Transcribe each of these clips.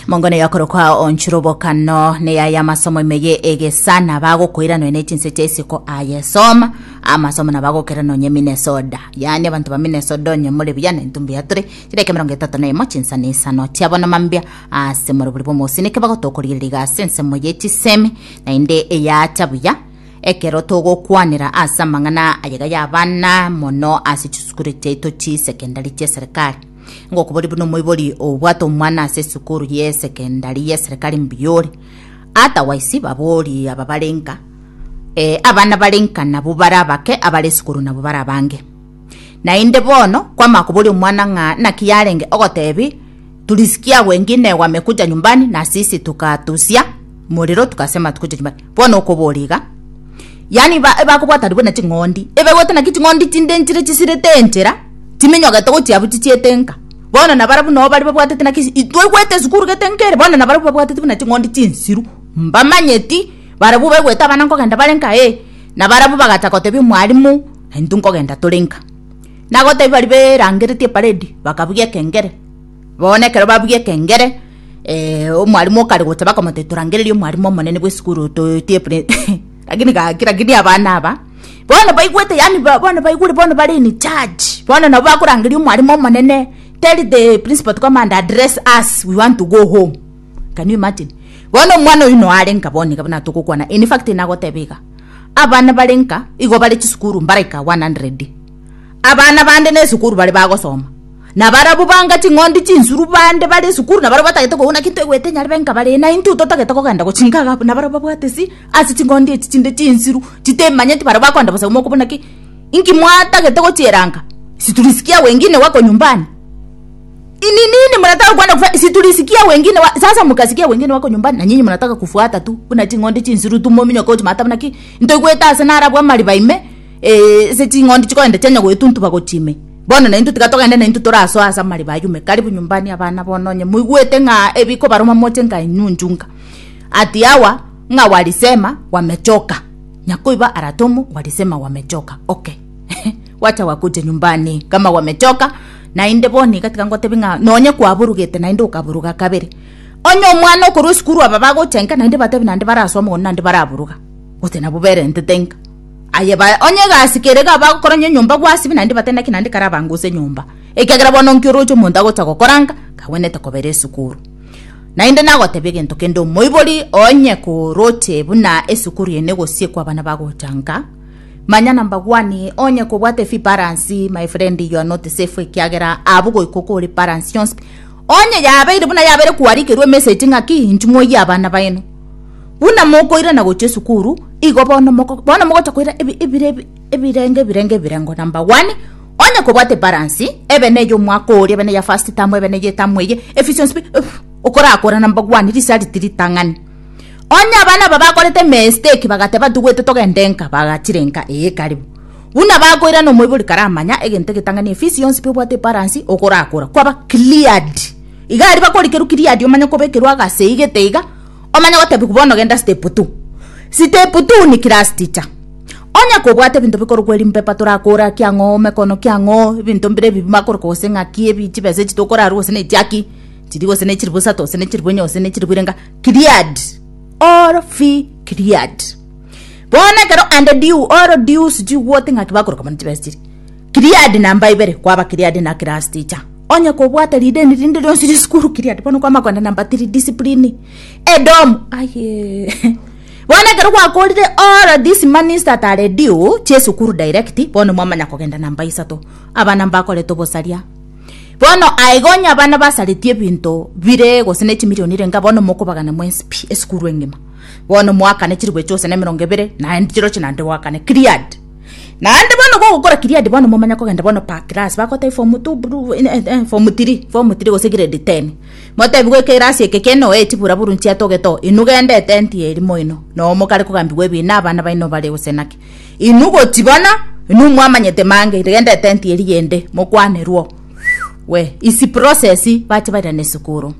Mongo ne yakorokwa onchura obokano ne yaya amasomo imeye egesa na bagokoira nonya ne chinsete isiko ayesoma amasomo na bagokera nonya Minnesota yani abantu ba Minnesota onye muri buya ne ntumbi yatore chireke mirongo etato na imo chinsani isano chiabono mambia ase muri buri bomosi neke bagotokorigereria gase ensemo ye chisemi na inde eyacha buya ekero togokwanera ase amang'ana ayega y'abana mono ase chisukuru chiaito chisekendari chia serikali ngokobori buna omoibori obwate omwana ase esukuru y'esekendari y'eserekari mbuya ore otherwise babori aba bare nka eh, abana bare nka nabo bare abake abare esukuru nabo bare abange naende bono kwama kobori omwana ng'a naki yarenge ogotebi tulisikia wengi negwame kuja nyumbani na sisi tukatusia morero tukase amatuko chia chimbaga bono okobora iga yaani ba ebakobwata aria buna ching'ondi ebegwete naki ching'ondi chindenchire chisirete enchera timinyogete gochia abwo chichiete nka bono na barabwo nabo baria babwatete naki isi twaigwete esukuru gete enka ere bono na barabwo babwatete buna ching'ondi chinsiru mbamanyeti barabwo baigwete abana nkogenda bare nka ee na barabwo bagacha gotebia omwalimu intwe nkogenda tore nka nagotebia baria berangeretie eparedi bakabugia ekengere. Bono ekero babugia ekengere, eh, omwalimu okare gocha bakamotebia torangererie omwalimu omonene bw'esukuru toetie pre lakini gaki lakini abana aba bono baigwete yaani ba- bono baigure bono bare in charge bono nabo bakorangeria omwalimu omonene tell the principal to come and address us we want to go home can you imagine bono omwana oyio noare nka bono iga buna togokwana in fact nagoteba iga abana bare nka igo bare chisukuru mbaraika 100 abana bande na esukuru bare bagosoma Na barabwo banga ching'ondi chinsuru bande bare esukuru, na barabwo batagete koigwa naki toigwete inyare benka bare, na intwe totagete kogenda gochinga iga abwo, na barabwo babwate isi ase ching'ondi echi chinde chinsiru chitemanyeti, barabwo bakonda bosa imoka buna ki, Inki mwatagete gochieranka? Siturisikia wengine wako nyumbani? Ni nini murataka kwenda kufa? Siturisikia wengine wa sasa mukasikia wengine wako nyumbani, na nyinyi murataka kufuata tu buna ching'ondi chinsiru tu mominyoke gochimata buna ki, Ntoigwete ase narabwo amariba ime, Ase ching'ondi chikoenda chianya goetuntuba gochia ime, bono naintwe tiga togende naintwe torasoe ase amariba ayume. Karibu nyumbani abana bono onye moigwete ng'a ebikobaruma moche nka enyunju nka Ati yawa ng'a walisema wamechoka. Nyakoiba aratomo walisema wamechoka. Okay wacha wakuja nyumbani kama wamechoka naende bono iga tiga ngotebi ng'a nonye kwaburugete naende okaburuga kabere. Onye omwana okorwa esukuru aba bagocha nka naende batebi naende barasoa mogondo naende baraburuga gose nabo berentete nka. Aye bae onye egasi kere iga bagokora enyomba gwasibe naende bate naki naende karabange ase enyomba, ekiagera bono nki oroche omonto agocha gokora ng'a kagwenerete kobera esukuru? Naende nagotebia egento kende omoibori onye koroche buna esukuru eye negosiekwa abana bagocha ng'a manya na mbagwanie onye kobwate fee balance my friend you are not safe ekiagera abwo goika okore balance yonsi onye yabeire buna yabeire kwarikerwa emesegi ng'aki inchumoyie abana baino Buna mokoirana gochia esukuru, igo bono mogocha koira ebirengo ebirengo ebirengo, number one, onye kobwate ebaransi, ebe neye omwaka oria, ebe neya first term, ebe neye etamu eye, efficiency fee, okorakora number one, risariti ritang'ani. Onye abana aba bakorete emesiteki bagateba ntugwete togende nka, bagachire nka, ee karibu. Buna bakoirana omoibori karamanya egento egetang'ani efisi yonsi pi obwate ebaransi, okorakora, kwaba cleared. Iga aria bakorikerwa kiriati omanye kobekerwa agase igete iga omanye gotebiwa bono genda step two. Step two ni class teacher. Onye kobwate ebinto bikorokwa erim paper torakore aki ang'o ome kono ki ang'o ebinto mbire ebi bimakorokwa gose ng'aki ebi chibesa echi tokorarwa gose ne echi aki chiri gose ne chiribu isato gose ne chiribu enya gose ne chiribu irenga cleared. All fee cleared. Bono ekero and due all due sijui what ng'aki bakoroka mono chibesa chiria. Gileadi na mba ibere, kwaba Gileadi na class teacher. Onye kobwate rideni rinde rionsi risukuru Gileadi, bono kwama kogenda namba tiri discipline. Edomu, aye bono ekero gwakorire all this manist at a redio chesukuru direct, bono mwamanya kogenda namba isato. Abana mbakorete obosaria. Bono aiga onye abana basaretie ebinto bire gose ne chimilioni renga bono mokobagana mwenspi esukuru engima. Bono mwakane chiribu echoose na emerongo ebere, naende chirochio naende gwakane Gileadi. Naende bono gogokora Gilead bono momanye kogenda bono per class bagotebi form two bru- eh, eh, eh, form three form three gose grade ten motebigwe ekerasi eke keno eh, chiburaburu nchiatogete oo inwe genda etenti eri moino noo mogare kogambigwa ebina abana baino bare gose naki inwe gochi bono inwe mwamanyete mange genda etenti eri yende mokwanerwe oo we isi process bache bairane esukuru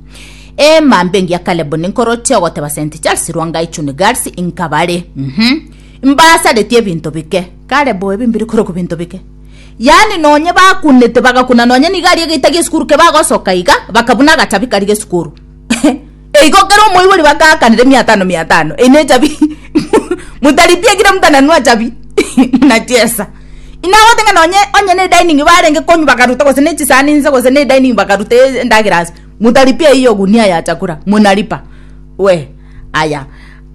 emambe engiya Caleb ninkoroche ogoteba St Charles Rwangai Chuni Girls inkabare mhm Mbaasaretie ebinto bike. Kare bo ebi mbire korokwa ebinto bike. Yaani nonye bakunete bagakuna nonye nigo aria egeita gi'esukuru ke bagosoka iga bakabuna agachabi karia g'esukuru. Eigo kera omoibori bagaakanera emiatano miatano eyi nechabi mutaripie kira mtu ananua chabi munachesa. Inagote ng'a nonye onye ne dining barenge konywa bakaruta gose ne chisani inse gose ne dining bakaruta endagera ase mutaripia eyio ogunia ya chakula munaripa. We aya.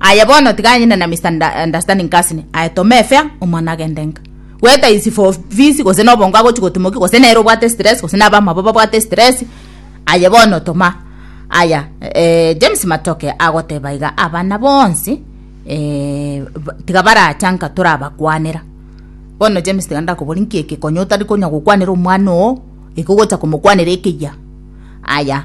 Aye bono tiga anyene na Mister understanding Kasne aye to me fair omwana agende nka gweta is for fees gose na obongo agochi gotimoki gose nere obwate stress gose na abamabo babwate stress aye bono toma aya eh, James Matoke agoteba iga abana bonsi eh, tiga baracha nka torabakwanera bono James tiga ndakobori nki ekekonyo otari konya gokwanera omwana oo iko gocha komokwanera ekeyia aya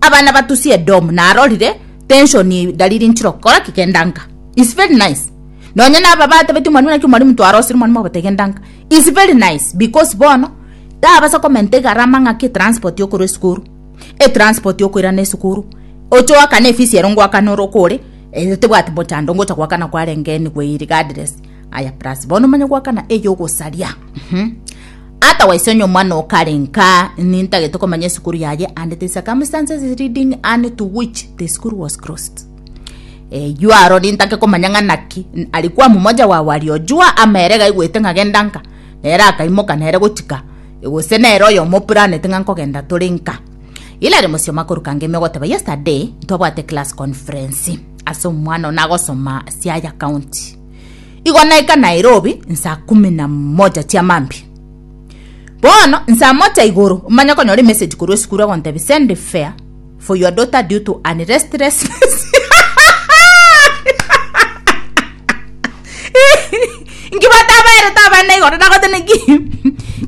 Abana batusie Edomu narorire tenshoni dalili nchire gokora ki genda nka is very nice nonye naba batabeti omwalimu naki omwalimu twarosire omwalimu ogote genda nka is very nice because bono tabasa komenta egarama ng'aki etransport yokorwa esukuru etransport yokoirana esukuru oche oakane efisi ero ngoakane ore okore eh tebwati mochando ngocha goakana kwarenge anyway regardless aya plus bono omanye goakana eyogosaria mhh. Ata wise onye omwana oo kare nka nintagete komanya esukuru yaye and the circumstances leading Anne to which the school was closed. Eywo aro nintake komanya ng'a naki ari kwa momoja wa wari ojua ama ere gaigwete ng'agenda nka nere akaimoka nere gochika gose nere oyo omoplanete ng'a nkogenda tore nka. Hilary Mosioma akoruka ngemi ogoteba yesterday ntwabwate class conference ase omwana oo nagosoma Siaya County. Igo naika Nairobi nsaa kumi na moja chia mambia. Bono nsaa moja igoro manya konyora emessage korwa esukuru egontebia send fare for your daughter due to an restlessness inki batabaerete abana igoro nagote naki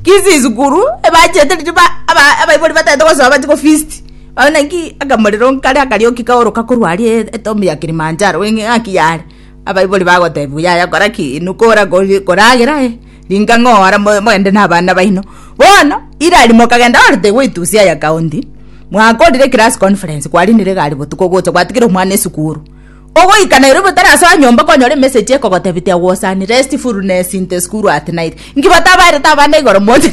kisi esukuru ebachete riria ba- aba- abaibori batagete gosoa bache gofeast babe naki akamorero nkare akarioki kaoroka korwa aria e- etomi ya kilimanjaro eng'aki yare Abaibori bagotebiwa, Yaya kora ki? Inwe kora kori- koragera aye, ringa ng'oora mo- mogende n'abana baino. Bono Hilary mokagenda orete goitusia aya county, mwakorire class conference, kwarinire egari botuko ogocha gwatigire omwana esukuru. Ogoika Nairobi otarasoa nyomba okonyora emessage ekogotebia tiga gosani restfulness in the school at night. Inki batabaerete abana igoro moche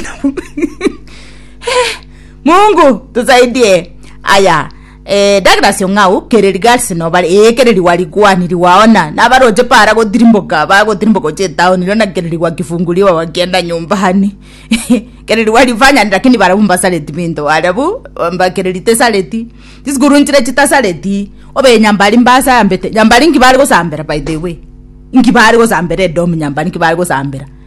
Mungu tusaidie. Aya. Eh, Douglas Ong'au, kere regards nobare, eh, kere riwa rigwani riwaona, nabaroche para gotirimboka, bagotirimboka oche etown, rirorio naki kere riwa kifunguri baba bakienda nyumbani, kere riwa rifanyani lakini barabwo mbasareti binto, arabwo mba kere ritesareti, chisukuru nchire chitasareti, obe nyambari mbasambete, nyambari nki bare gosambera by the way, nki bare gosambera edomu nyambari nki bare gosambera.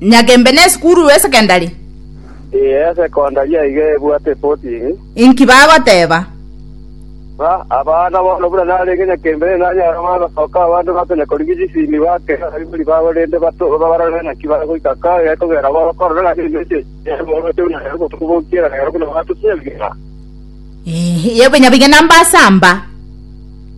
Nyagembe nesukuru y'esekendari? Ee, esekondari aiga ebwate epotini. Inki bagoteba? Ng'a abana bono buna narenge Nyagembe nere nanyare bagosoka abande bakonya korigia chisimi bakere abaibori babo rende bato barore naki bagoika kae gekogera bagokorora ng'a nemechi eria ere boroche buna ere botuko bokiera nero buna batuti nyabigena. Ee, nyabigena mbasamba.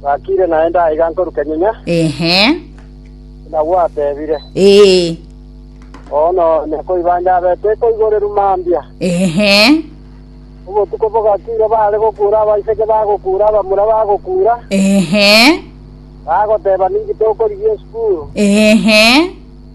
Gwakiire naende aiga nkoruke nyinya, Ehe. buna gwatebire. Ee. Bono nekoibanja abete koigoreru mambia. Ehe. Obotuko bogakiire baare gokuura abaiseke bagokuura abamura bagokuura, Ehe. bagoteba ninki tokorigia esukuru. Ehe.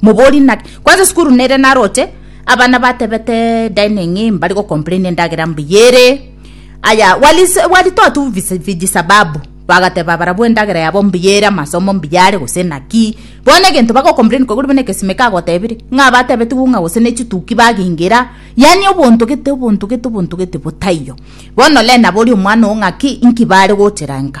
Mobori naki? Kwanza esukuru nere naroche, abana batebete dining mbari go complain endagera mbuya ere. Aya waritoa tu vijisababu, bagateba barabwo endagera yabo mbuya ere, amasomo mbuya are gose naki. Bono egento bago complain koigwa buna egesime kagotebire ng'a batebetigwe ng'a gose ne chituki bagengera, yaani obonto gete obonto gete obonto gete botaiyo. Bono Lea nabori omwana oo ng'aki, inki bare gochera nka?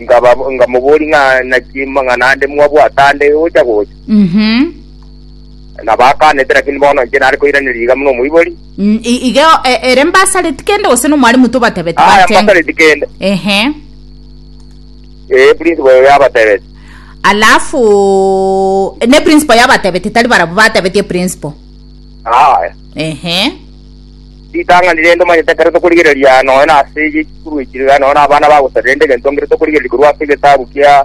Nkaba- Nkamoboria ng'a naki mang'ana ande mwabwate ande gocha gocha. Mhm. Na bakaanete, lakini bono inche nare koiraneria iga buna omoibori. Mm, i- Igeo e- ere mbasareti kende gose nomwarimu tobatebete Aya batenge. mbasareti kende. Ehe. Eh, principal oyo yabatebete. Alafu ne principal yabatebete tari barabwo batebetie principal. Aya. Ehe. Ritang'ani rende omanyete ekero tokorigereria nonya nase eye chikuru echi, iga nonya nabana bagosaba, rende egento ngeto tokorigereria korwa ase egetabu kia.